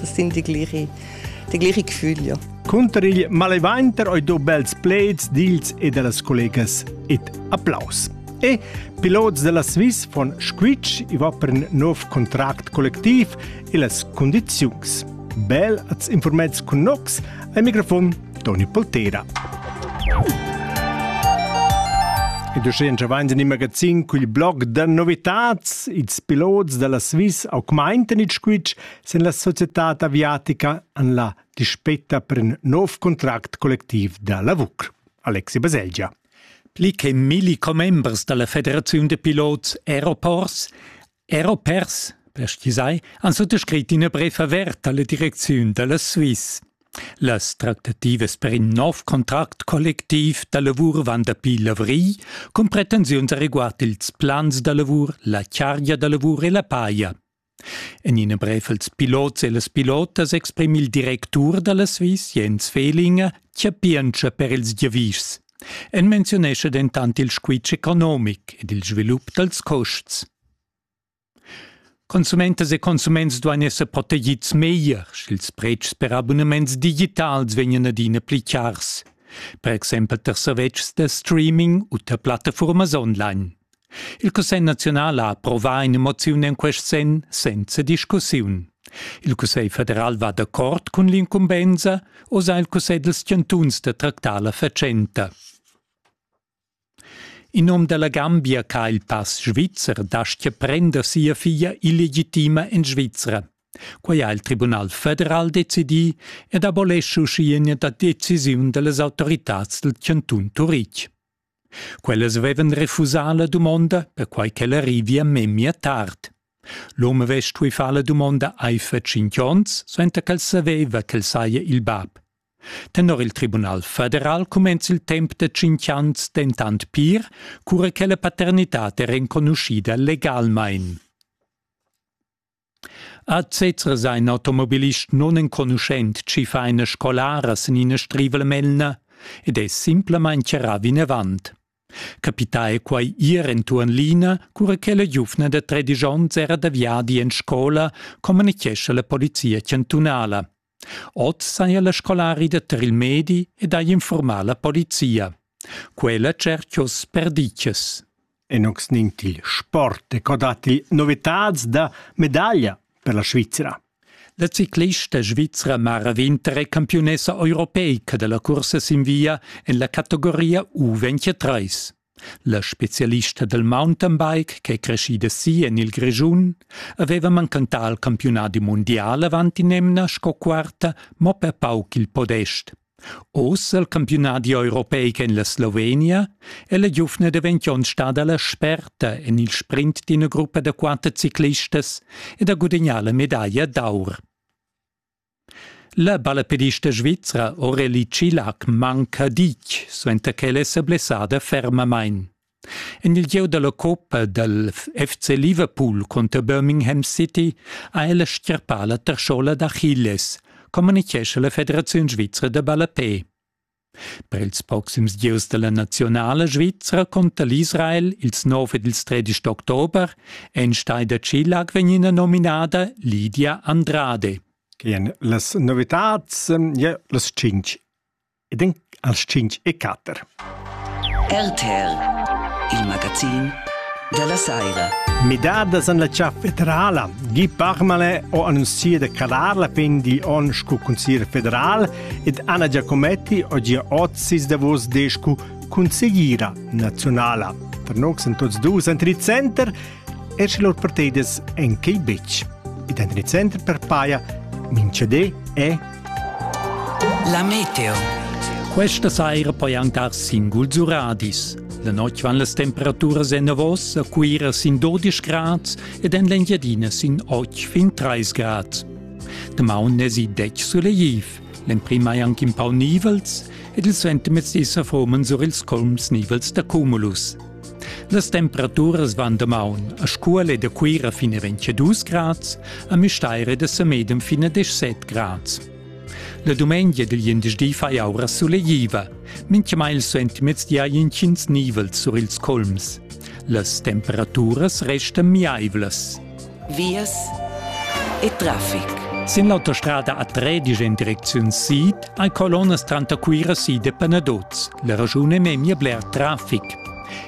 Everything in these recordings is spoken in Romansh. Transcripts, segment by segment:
das sind die gliche, die gliche Gefühle. Cunter il malevanter oi do bels pleds dils e dellas collegas et applaus. E pilots della Swiss von Squitsch i va per un nov contract collectiv e las condiziuns. Bel als informets con nox al microfon Toni Poltera. Ed uschè in vain in magazin cul blog da novitats, ils pilots della Swiss augmenten il squitsch sin la societad aviatica en la dispetta per in nov contract collectiv da lavur. Alexi Baselgia. Pli che milli commembers dalla Federaziun de Pilots Aeroports, Aeropers, per stisai, han sottoscrit ina bref avert alla direcziun dalla Swiss. Las tractativas per in nov contract collectiv da lavur van dapi l'avril, cun pretensiuns a riguard ils plans da lavur, la chargia da lavur e la paia. En ina brev als pilots e las pilotas exprima il directur dalla Swiss Jens Fehlinger chapientscha per ils giavischs. En menziunescha dentant il squitsch economic ed il svilup dals custs. Consumentas e consuments duain esser protegids meglier, sch'ils pretschs per abunaments digitals vegnan adina pli chars, per exempel tar servetschs da streaming u tar plattafuormas online. Il Cussegl naziunal ha approvà ina moziun en quest senn senza discussiun. Il Cussegl federal va d'accord cun l'incumbensa, osa il Cussegl dals chantuns da tractar la fatschenta. In um da la Gambia che ha il pass svizzer dastgia prender sia figlia illegitima en Svizra. Quai ha il Tribunal federal decidì ed abolesce uschia ina decisiun da las autoritads dal chantun Turitg. Quellas vevan refusà la dumonda, perquai ch'el arrivia memia tard. L'hom avess stuì far la dumonda aifer tschintg onns, suenter ch'el saveva ch'el saja il bab. Tenor il Tribunal federal cumenza il temp da tschintg ans dentant pir, cura che la paternitad è renconuschida legalmain. A Zezers ein automobilist nunenconuschent chi fa ina scolara sin ina strivala melna ed è simplamain charrà vinavant. Capità è quai ir entuorn l'ina, cura che la giuvna da tredisch onns era da viadi en scola, communichescha la polizia chantunala. Oz saja la scolarida tar il medi ed hai infurmà la polizia. Quella tscherchos perditgas. Enox nin til sport e co datti novitads da medaglia per la Svizra. La ciclista svizra Mara Winter è campiunessa europeica da la cursa sin via en la categoria U23. La specialista dal mountainbike ch'è creschida si en il Grischun aveva manchentà il campiunadi mundial avant in'emna sco quarta mo per pauc il podest. Oz il campiunadi europeic en la Slovenia è la giuvna davent onn stada la sperta en il sprint d'ina gruppa da quatter ciclistas ed ha gudagnà la medaglia d'aur. La ballapedista svizra Aurélie Cilac manca ditg, suenter ch'ella è sa blessada fermamain. En il gieu da la coppa dal FC Liverpool conter Birmingham City ha ella stgarpà la tarschola d'Achilles, communitgescha la Federaziun svizra da ballapè. Per ils proxims gieus dalla naziunala svizra conta l'Israel ils nov ed ils tredisch d'october. Einstein da Chilag vegn ina nominada Lydia Andrade. Quien las novitats, ja las cinc. E den als cinc e quatter. RTL, il magazin della Saira. Midadas en la cià federala. Gi parmale o annuncia de calar la pen di on scu consiglio federal ed Anna Giacometti ho gia ot sis davos descu cun segira nazionala. Per nox en tots dus entri center e sche lor parteides en quei betg. Ed entri center per paia Mincede e La Meteo. Questa saira poi ancar singul Zuradis. La notg van las temperaturas en avos a Cuira sin 12 grad ed en l'Engiadina sin 8 fin 30 grad. Damaun n'esi detg sulegliv, l'emprim hai anc in pau nivels ed il suentermezdi sa forman sur ils colms nivels da cumulus. Las temperaturas van damaun a Scuole da Cuira fin a 22 grads, a Müstair da Semedem fin a 17 grads. La dumengia dil glindesdi fai aura sulegliva, mintgamai il suentermezdi hai intgins nivels sur ils colms. Las temperaturas restan miaivlas. vias e traffic. Sin l'autostrada a Tredisch en direcziun sid hai colonnas tranter Cuira sid e Penadoz. La raschun è memia bler traffic.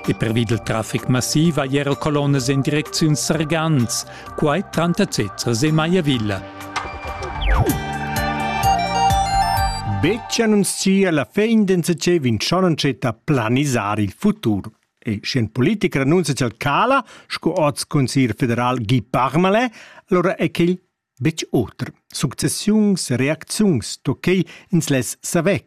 E pervi dal traffic massiv hai era colonnas en direcziun Sargans, quai tranter Zezzers e Maiavilla. Beccia non sia la fin d'ensecer vincionon cetta planisar il futur. E sc'in politic renunzia ch'el cala, sco oz consiglier federal Guy Parmelin, allora è quel betg oter. Successiuns e reacziuns to quei ins less saver,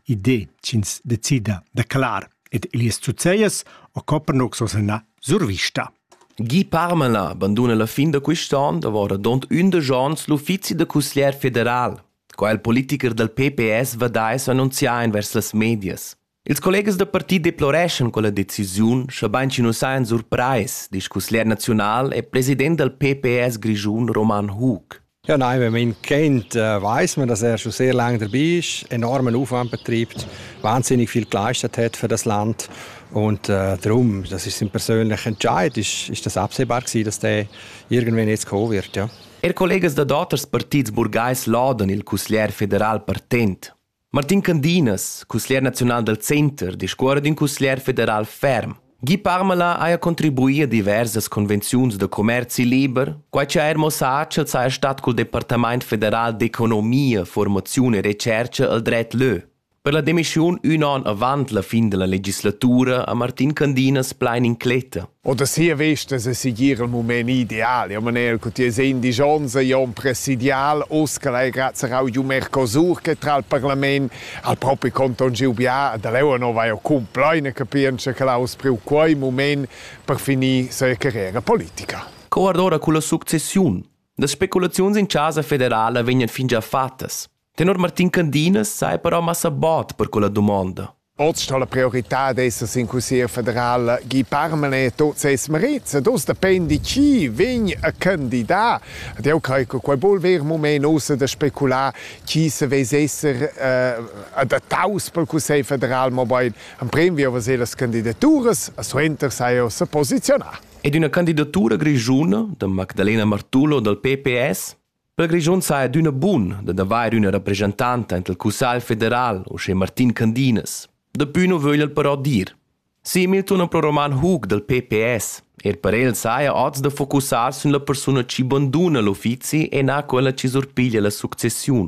idee ch'ins decida da clar. Ed Elias Zuzejas o Copernox o sena survista. Guy Parmelin banduna la fin da quest'anno davora dont undici anns l'uffizi da consiglier federal. Qua il politiker dal PPS va da annunziar vers las medias. Ils collegas da parti deploreschan quella decisiun, schabein chi nu sajan surprais, disch cusglier naziunal e president dal PPS grischun Roman Hug. Ja, nein, wenn man ihn kennt, äh, weiß man, dass er schon sehr lange dabei ist, enormen Aufwand betreibt, wahnsinnig viel geleistet hat für das Land und äh, darum, das ist sein persönlicher Entscheid, ist, ist das absehbar gewesen, dass der irgendwann jetzt kommen wird, ja. Er collegas da d'auters partits burgais lauden il cusglier federal partent. Martin Candinas, cusglier naziunal dal center, discuorra d'ün cusglier federal ferm. Guy Parmala haja contribuì a diversas convenziuns da commerzi liber, quai cha eir mo sa ch'el saja stat cul Departamaint federal d'economia, formaziun e retschercha al dret lö. Per la demissiun ün on avant la fin da la legislatura ha Martin Candinas plain incletta. O da sia vesta se sigir il mument ideal. Io man eir cu ti es indigions e io un presidial, us che l'hai grazie au Iu Mercosur che tra al Parlament al propi Conton Giubià, e da leu no vai o cumpleine capienza che l'ha us priu quei mument per finir sa carriera politica. Co ardora culla successiun? Das Spekulaziuns in Chasa federala vegnan fingià fattas. Tenor Martin Candinas sai però massa bod per quella dumonda. Oz sto la prioritad esser sin cussier federal Guy Parmanet tot ses merits ed oz dependi chi vegn a candidat. Ed eu crei che quai bol ver mument ossa da specular chi se vess esser eh, adattaus pel Cussegl federal, mobain en prem via vaser las candidaturas, a suenter sai ossa posizionar. Ed una candidatura grigiuna da Magdalena Martullo dal PPS Per Grischun saja adüna bun dad avair üna rapreschantanta int il Cussagl federal, uschè Martin Candinas. Dapü nu vögl el però dir. Simil tuna pro Roman Hug dal PPS. Er per el saja oz da focussar sün la persuna chi banduna l'uffizi e na quella chi surpiglia la successiun.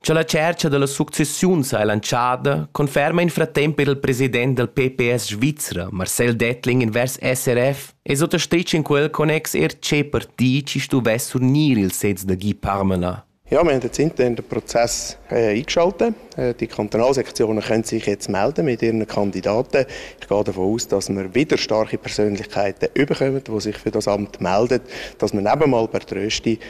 Cha la tschercha da las successiuns ha lantschada conferma in fratemp eir il president dal PPS svizra, Marcel Dettling invers SRF, e sot es stet in quel connex eir tschè partì chi stuvess surnir il sez da Guy Parmelin. Ja, wir haben jetzt intern den Prozess äh, eingeschaltet. Äh, die Kantonalsektionen können sich jetzt melden mit ihren Kandidaten. Ich gehe davon aus, dass wir wieder starke Persönlichkeiten bekommen, die sich für das Amt melden, dass wir nicht einmal per Trösti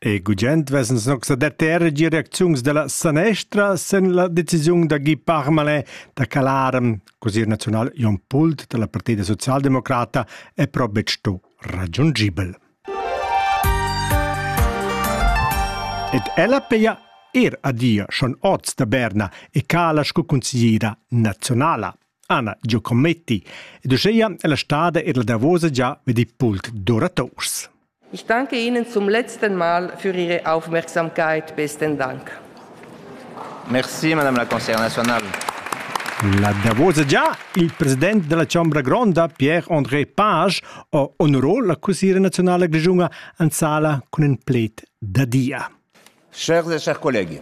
E gugent vesens nox da terra gi reacziuns della sanestra sen la decisiun da Guy Parmelin da calar così il nazional Jon Pult della Partita Socialdemocrata è però sto raggiungibel. Ed ella peia er adia schon oz da Berna e cala sco consigliera nazionala. Anna Giocometti ed uscheia è la stada e la davosa gia med il pult d'oratours. Ich danke Ihnen zum letzten Mal für Ihre Aufmerksamkeit. Besten Dank. Merci, Madame la Conseillère nationale. La davosa già, il president della Chambra Gronda, Pierre-André Page, ha onorò la cusiera nazionale grigiunga an sala cun in pled da dia. Chers et chers collègues.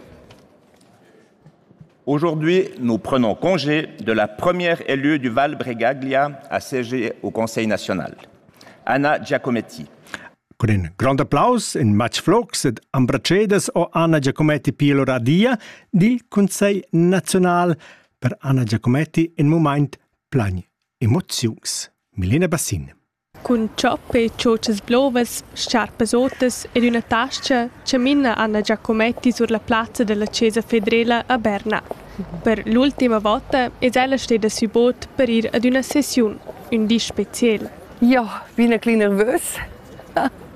Aujourd'hui, nous prenons congé de la première élue du Val-Bregaglia à siéger au Conseil national, Anna Giacometti. Con in grond applaus in matg flocs ed ambracedas o Anna Giacometti pia lura dia dil Consiglio nazional per Anna Giacometti in moment plagn emoziuns. Milena Bassin. Cun tschop e tschotschas blovas, scarpas otas ed üna tascha chamina Anna Giacometti sur la plazza della chesa federela a Berna. Per l'ultima vota es ella steda sü bod per ir ad üna sessiun, ün di speciel. Ja, bin e clü nervös.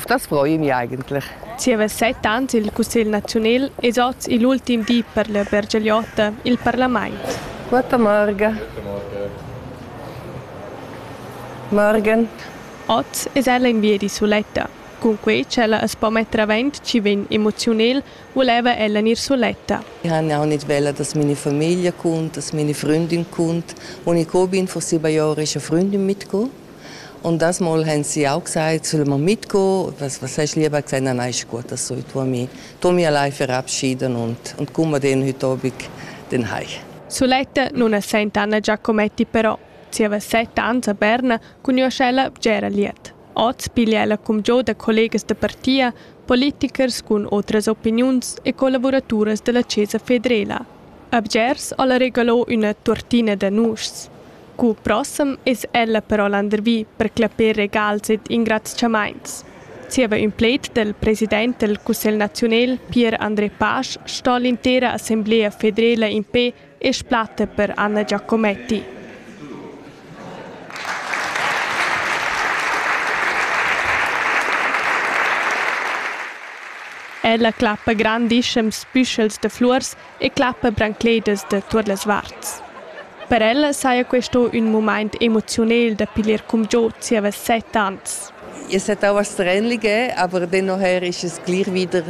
Stas frein ei eigentlich. Ti havess sei tant il cussegl naziunal ed oz igl ultim di per la Bergigliotta il parlament. Quatta marga. Morgen. Oz es ella in viedi suletta. Cunquei ch'ella as po metter avent chi vegn emoziunel, voleva ella gnir suletta. Ich habe auch nicht wollen, dass meine Familie kommt, dass meine Freundin kommt. Und ich bin vor sieben Jahren eine Freundin mitgekommen. Und das Mal haben sie auch gesagt, sollen wir mitgehen, was, was hast du lieber gesagt? Nein, nein, ist gut, das soll ich mich, mich allein verabschieden und, und kommen wir dann heute Abend dann heim. Suletta non assenta Anna Giacometti però. Zieva sette anni a Berna conosce la Gera Liet. Oz piglia ella cum giò da collegas da partia, politikers cun otras opiniuns e collaboraturas della Cesa Fedrela. A Bgers alla regalò una tortina da nuschs. Cul prossem es ella però landervi per clapper regals ed ingrazchamaints. Zieva ün pled del president del Cussegl naziunel Pier André Pasch sto l'intera assemblea federela in pe e splatta per Anna Giacometti. Ella clappa grandischems büschels de flurs e clappa brancledas da tuot las varts. Per ella saja questo ün mumaint emoziunel da piglier cumgiò zieva set ans. Es settava strenlige, aber dennoch ist es gleich wieder,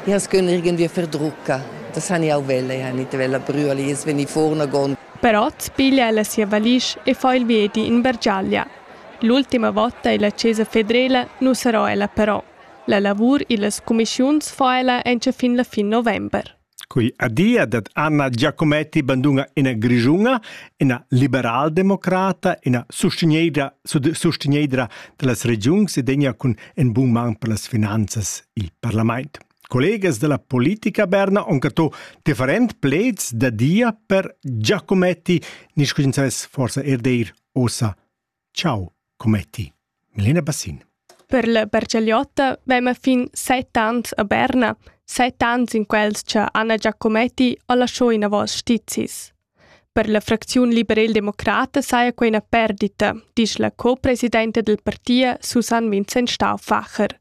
ich habe es irgendwie verdrucca. Das habe ich auch wollen, ich habe nicht wollen brüllen, jetzt wenn ich vorne gehe. Però piglia ella sia valisch e fa il viedi in Bergiaglia. L'ultima volta illa Chiesa federela nu sarà ella però. La lavur illas cumischiuns fa ella encha fin la fin november. Quei adia dad Anna Giacometti banduna ina grischuna, ina liberaldemocrata, ina sustegnedra, sustegnedra dallas regiuns e degna cun in bun man per las finanzas il parlament. Collegas della politica berna on catto different pleds da dia per Giacometti, niscuins forsa er deir ossa Ciao, cometti. Milena Bassin. Per la Bercialiotta vema fin set ans a Berna, set ans in quels che Anna Giacometti ha lasciò in avos stizis. Per la fracziun liberal-democrata saja quei una perdita, dice la co-presidente del partito Susanne Vincent Stauffacher.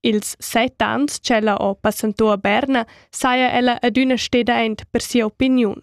Ils set ans ch'ella ho passento a Berna saja ella adüna steda aint per sia opiniun.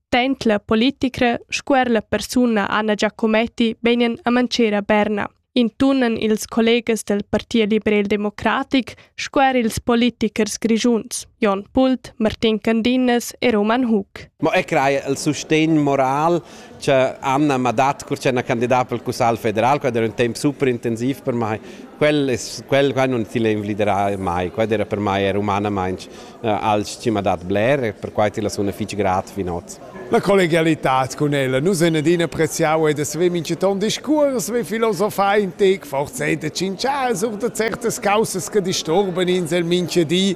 Tant la politicra sco er la persuna Anna Giacometti vegnan a mancher a Berna, intunan ils collegas del Partit liberal-democratic sco er ils politichers grischuns Jon Pult, Martin Candinas e Roman Hug. Ma e craja il sustegn moral Cioè Anna mi ha dat cur c'è una candidata pel Cussagl federal, quel era un temp super intensiv per mai. Quel, es, quel qua non ti l'invliderà mai, quel era per mai era umanamaintg uh, alch chi m'ha dat bler e perquai ti la suna fich grat fin hoz. La collegialità con ella, nus en adina appreziau ed es ve minchaton discuors, ve filosofar in tec, forse da cinchas oder certas causas che disturban ins el mincha di.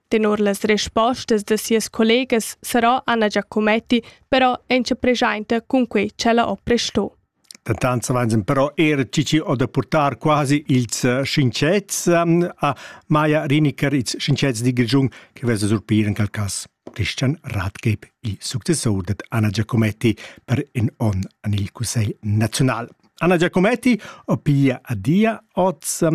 Tenor las respostas da sias collegas sarà Anna Giacometti però enzapregiainta cun quei ch'ella ho presto. Dentant savens però er cici o da portar quasi ils eh, schinchets ehm, a Maja Riniker, ils schinchets di Grigiun che vesa surpir in quel cas Christian Ratgeb, il successor da Anna Giacometti per in on an il Cussegl nazional. Anna Giacometti opia adia oz,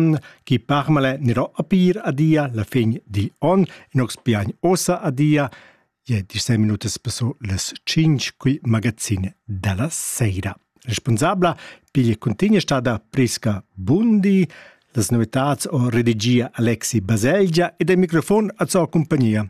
chi parmale niro opir adia la fin digl on, in ox piagn osa adia, je disei minutas passo las cinc qui magazin della seira. Responsabla piglia continua stada Priska Bundi, las novitats o redigia Alexi Baselgia ed il microfon a sua compagnia.